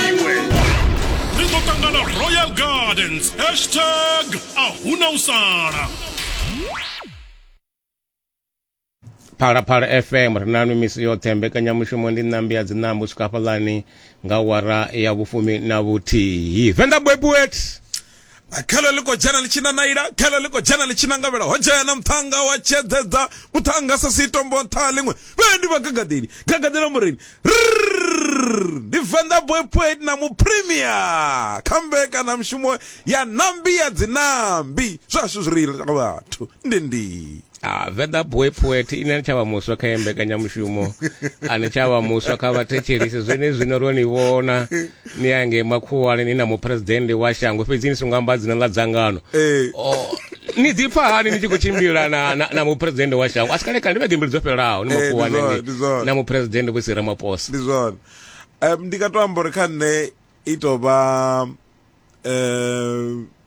iwe ri ḓo ṱangana royal gardens hashtag a huna u sala phalaphala fm ri nanu misi yoṱhe mbekanyamushumo ndi ṋambi ya dzinambo swika hafhaḽani nga wara ya vhufumi na vhuthihi venḓa bwebuet khelo ḽi khou dzhena ḽi tshi nanaila khelo ḽi khou dzhena ḽi tshi nangavhela ho dzhena muṱhannga wa tshedzedza muṱhannga sa sitombo nṱha ḽiṅwe vhendi vha gagadeli gagadela mureni ndi venḓa boy poet na mupremia kha mbekana mushumo ya nambi ya dzinambi zwashu zwi reila vhathu ndi ndi Ah, Venḓa Boy Poet ine ni tshavha muswa kha mbekanyamushumo a ni tshavha muswa kha vhathetshelisi zwenezwino ro ni vhona ni ya ngei makhuwani ni na muphuresidennde wa shango fhedzi ni songo amba dzina ḽa dzangano Ee. Oh, ni ḓipfa hani ni tshi khou tshimbila na, na, na muphuresidennde wa shango a si kale kale ndi vhege mbili dzo fhelelaho ni Eh, ndi zwone, ndi makhuwani zwone. na muphuresidennde vho si ramaphosa ndi zwone um, ndi nga to amba uri kha nṋe i to vha um,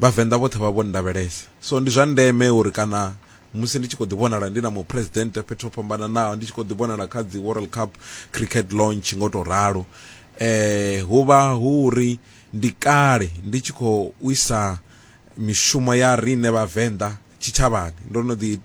Vhavenḓa vhoṱhe vha vho nndavhelesa. So ndi zwa ndeme uri kana musi ndi tshi khou ḓi vhonala ndi na muphuresidennde fhethu ho fhambananaho, ndi tshi khou ḓi vhonala kha dzi World Cup Cricket Launch nga u tou ralo, hu vha hu uri ndi kale ndi tshi khou isa mishumo ya riṋe Vhavenḓa tshitshavhani. Ndo no ḓi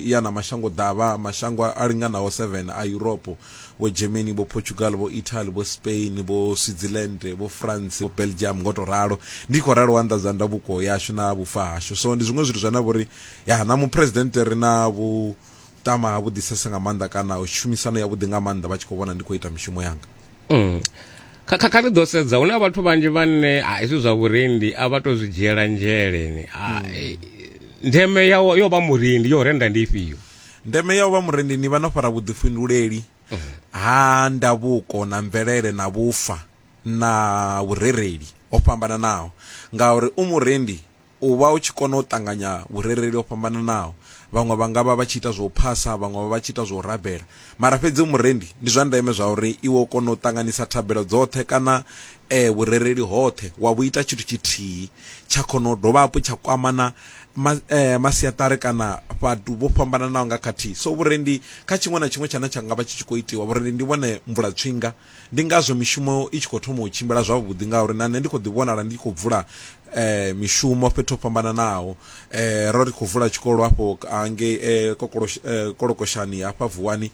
ya na mashangoḓavha mashango a linganaho 7 a Yuropo, Vho Germany, Vho Portugal, Vho Italy, Vho Spain, Vho Switzerland, Vho France, Vho Belgium, ngo to ralo. Ndi khou ralo u anḓadza ndavuko yashu na vhufa hashu. So ndi zwiṅwe zwithu zwane a vha uri, ya, na Muphuresidennde ri na vhuṱama ha vhuḓisesa nga maanḓa kana tshumisano yavhuḓi nga maanḓa vha tshi khou vhona ndi khou ita mishumo yanga. mm. kha kha ri ḓo sedza hu na vhathu vhanzhi vhane a hezwi zwa vhurendi a vha to zwi dzhiela nzheleni mm. eh, ndeme ya yo vha murendi yo renda ndi ifhio ndeme ya u vha murendi ni vha no fara vhuḓifhinduleli mm. ha ndavhuko na mvelele na vhufa na vhurereli ho fhambananaho ngauri u murendi U vha u tshi kona u ṱanganya vhurereli ho fhambananaho, vhaṅwe vha nga vha vha tshi ita zwa u phasa, vhaṅwe vha vha vha tshi ita zwa u rabela. Mara fhedzi u murendi, ndi zwa ndeme zwauri iwe u kone u ṱanganisa thabelo dzoṱhe kana vhurereli hoṱhe wa vhu ita tshithu tshithihi, tsha kona u dovha hafhu tsha kwama na masiaṱari kana fhathu vho fhambananaho nga khathihi. So vhurendi kha tshiṅwe na tshiṅwe tshane tsha nga vha tshi tshi khou itiwa, vhurendi ndi vhone mvula-tswinga Ndi ngazwo mishumo i tshi khou thoma u tshimbila zwavhuḓi ngauri na nṋe ndi khou ḓi vhonala ndi tshi khou bvula mishumo fhethu ho fhambananaho. Ro ri khou vula tshikolo hafho hangei Kolokoshani hafha Vuwani,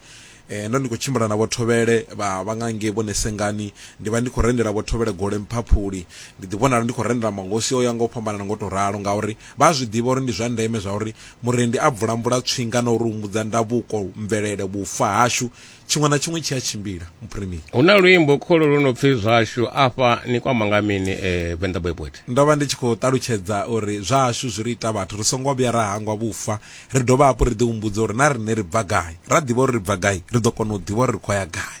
ndo ndi khou tshimbila na Vho Thovhele vha vha nga ngei Vho Nesengani, ndi vha ndi khou rendela Vho Thovhele gole Mphaphuli, ndi ḓi vhonala ndi khou rendela mahosi o yaho nga u fhambanana nga u tou ralo ngauri vha a zwi ḓivha uri ndi zwa ndeme zwa uri murendi a bvula-mbula tswinga na u ri humbudza ndavhuko, mvelele, vhufa hashu Tshiṅwe na tshiṅwe tshi a tshimbila muphirimeli. Hu na luimbo kholo lu no pfi zwashu afha ni kwama nga mini eh, Venḓa Boy Poet? Ndo vha ndi tshi khou ṱalutshedza uri zwashu zwi ri ita vhathu ri songo vhuya ra hangwa vhufa ri dovha hafhu ri ḓihumbudza uri na riṋe ri bva gai. Ra ḓivha uri ri bva gai ri ḓo kona u ḓivha uri ri khou ya gai.